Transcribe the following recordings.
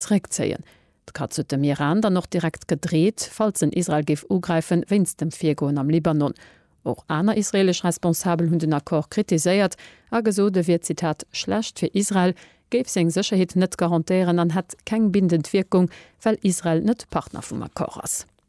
zeréckzéien. D'Katz huet dem Iran dann och direkt gedreet, falls en Israel géif ugräifen, wéinst dem Virgoen am Libanon. Och aner israeelesch Responsabel hunn den Accord kritiséiert a gesot, e wier, Zitat, schlecht fir Israel, géif seng Sécherheet net garantéieren an hätt keng bindend Wierkung, well Israel net Partner vum Accord ass.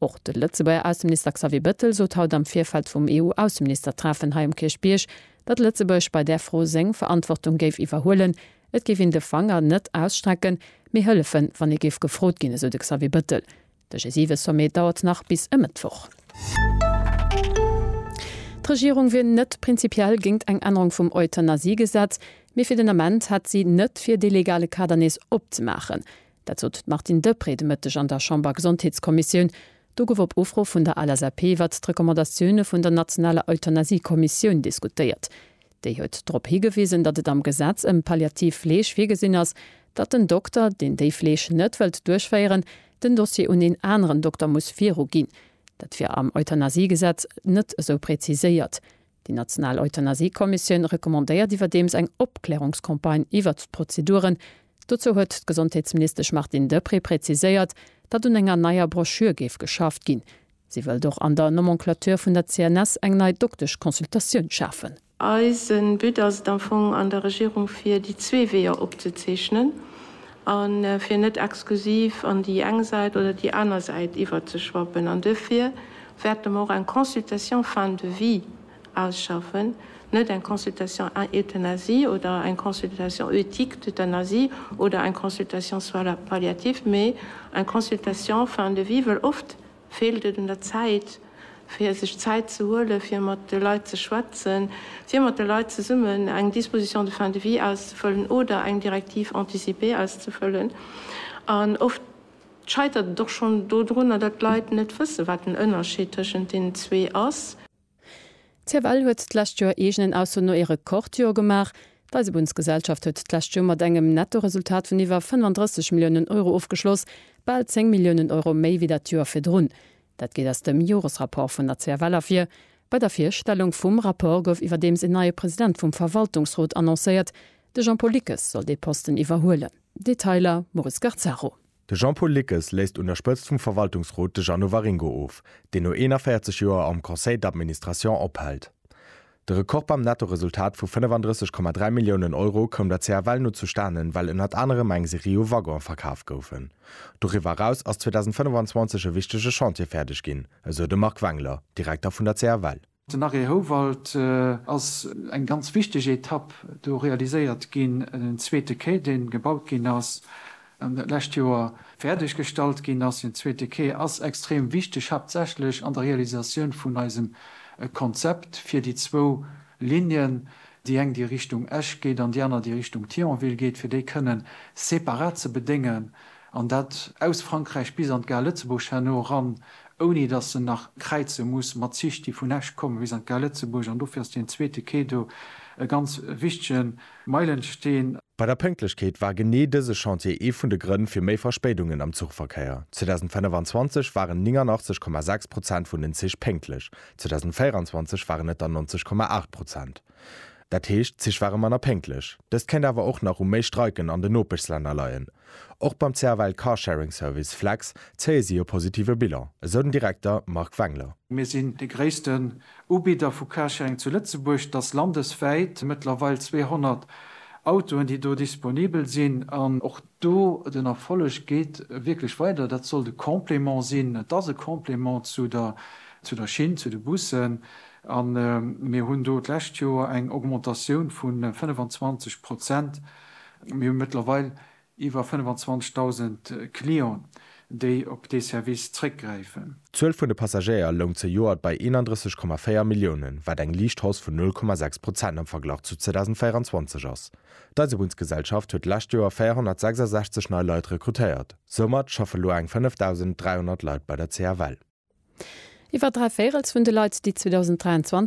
Och de Lëtzebuerger Ausseminister Xavier Bettel sot haut am Virfeld vum EU-Ausseministertreffen hei um Kierchbierg, datt Lëtzebuerg bei där Fro seng Verantwortung géif iwwerhuelen. Et géif een de Fanger net ausstrecken, mee hëllefen, wann ee géif gefrot ginn, esou de Xavier Bettel. De G7-Sommet dauert nach bis e Mëttwoch. D'Regierung wier net prinzipiell géint eng Ännerung vum Euthanasiegesetz, mee fir den Ament hätt si net vir, dee legale Kader nees opzemaachen. Dat sot d'Martine Deprez de Mëtteg an der Chambergesondheetskommissioun. Do gouf op Ufro vun der LSAP iwwert d'Recommandatioune vun der nationaler Euthanasie-Kommissioun diskutéiert. Déi huet drop higewisen, datt et am Gesetz ëm palliativ Fleeg virgesinn ass, datt den Dokter, deen déi Fleeg net wëllt duerchféieren, den Dossier un een aneren Dokter muss viruginn. Dat wier am Euthanasiegesetz net esou preziséiert. Déi national Euthanasie-Kommissioun recommandéiert iwwerdeems eng Opklärungscampagne iwwert d'Prozeduren. Dozou huet d'Gesondheetsministesch Martine Deprez präziséiert, datt un enger neier Broschür géif geschafft ginn. Si wëllt och an der Nomenclature vun der CNS eng nei Doktesch-Consultatioun schafen. Eise But ass et am Fong, an der Regierung fir déi zwee Weeër opzezeechnen. a fir net exklusiv an déi eng Säit oder déi aner Säit iwwerzeschwappen. An duerfir wäerte mer och eng Consultation fin de vie ausschaffen, net eng Consultation euthanasie oder eng Consultation éthique d'euthanasie oder eng Consultation soins palliatifs, mee eng Consultation fin de vie, wëll oft Feelt et un der Zäit, fir sech Zäit ze huelen, fir mat de Leit ze schwätzen, fir mat de Leit zesummen eng Disposition de fin de vie auszefëllen oder eng Directive anticipée auszefëllen? An oft scheitert et och schonn dodrunner, datt d'Leit net wëssen, wat den Ënnerscheed tëschent deenen zwee ass. CFL huet d'lescht Joer eegenen Ausso no ee Rekordjoer gemaach. D'Eisebunnsgesellschaft huet d'lescht Joer mat engem Nettoresultat vun iwwer 35 Milliounen Euro ofgeschloss, bal 10 Milliounen Euro méi wéi dat Joer virdrun. Dat geet aus dem Joresrapport vun der CFL ervir. Bei der Virstellung vum Rapport gouf iwwerdeems een neie President vum Verwaltungsrot annoncéiert. De Jean-Paul Lickes soll dee Posten iwwerhuelen. Detailer, Maurice Garzaro. De Jean-Paul Lickes léisst un der Spëtzt vum Verwaltungsrot de Jeannot Waringo of, deen no 41 Joer am Conseil d'administration ophält. De Rekord beim Nettoresultat vu 35,3 Milliounen Euro koum der CFL no zustanen, well ënnert anerem eng Serie u Waggonen verkaf goufen. Doriwwer eraus ass 2025 e wichtege Chantier fäerdeg ginn, esou de Marc Wengler, Direkter vun der CFL. Den Arrêt Houwald ass eng ganz wichteg Etapp. Do realiséiert ginn en zweete Quai, deen gebaut ginn ass an dat lescht Joer fäerdeg gestallt ginn ass. Den zweete Quai ass extrem wichteg, haaptsächlech an der Realisatioun vun eisem Konzept fir déi zwou Lignen, déi eng déi Richtung Esch geet an déi aner déi Richtung Thionville geet, fir déi kënnen separat ze bedéngen An dat aus Frankräich bis an d'Gare Lëtzebuerg herno eran, ouni datt se nach kräize muss mat Zich, déi vun Esch kommen bis an d'Gare Lëtzebuerg. An dofir ass deen zweete Quai do e ganz wichtige Meilensteen. Bei der Pënktlechkeet war genee dëse Chantier ee vun de Grënn fir méi Verspéidungen am Zuchverkéier. 2025 waren 89,6 Prozent vun den Zich pénktlech, 2024 waren et der 90,8 Prozent. Dat heescht, d'Zich ware manner pénktlech. Dëst kéint awer och nach u méi Streiken an den Nopeschlänner leien. Och beim CFL Carsharing Service Flex zéie si e positive Bilan, esou den Direkter Marc Wengler. Mir sinn de gréissten Ubidder vu Carsharing zu Lëtzebuerg. Et ass landeswäit mëttlerweil 200 Autoen, déi do disponibel sinn. Do, den Erfolleg geet wierklech weider. Dat sollt e Complément sinn. Et ass e Complément zu der, zu der Schinn, zu de Bussen. A mir hunn do d'lescht Joer eng Augmentatioun vu 25 Prozent. Mir hu mëttlerweil iwwer 25.000 Clienten, déi op dee Service zréckgräifen. D'Zuel vun de Passagéier loung zejoert bei 31,4 Milliounen, wat eng liicht Hausse vun 0,6 Prozent am Verglach zu 2024 ass. D'Eisebunnsgesellschaft huet d'lescht Joer 466 nei Leit rekrutéiert. Soumat schaffe lo eng 5.300 Leit bei der CFL. Iwwer dräi Véirels vun de Leit, déi 2023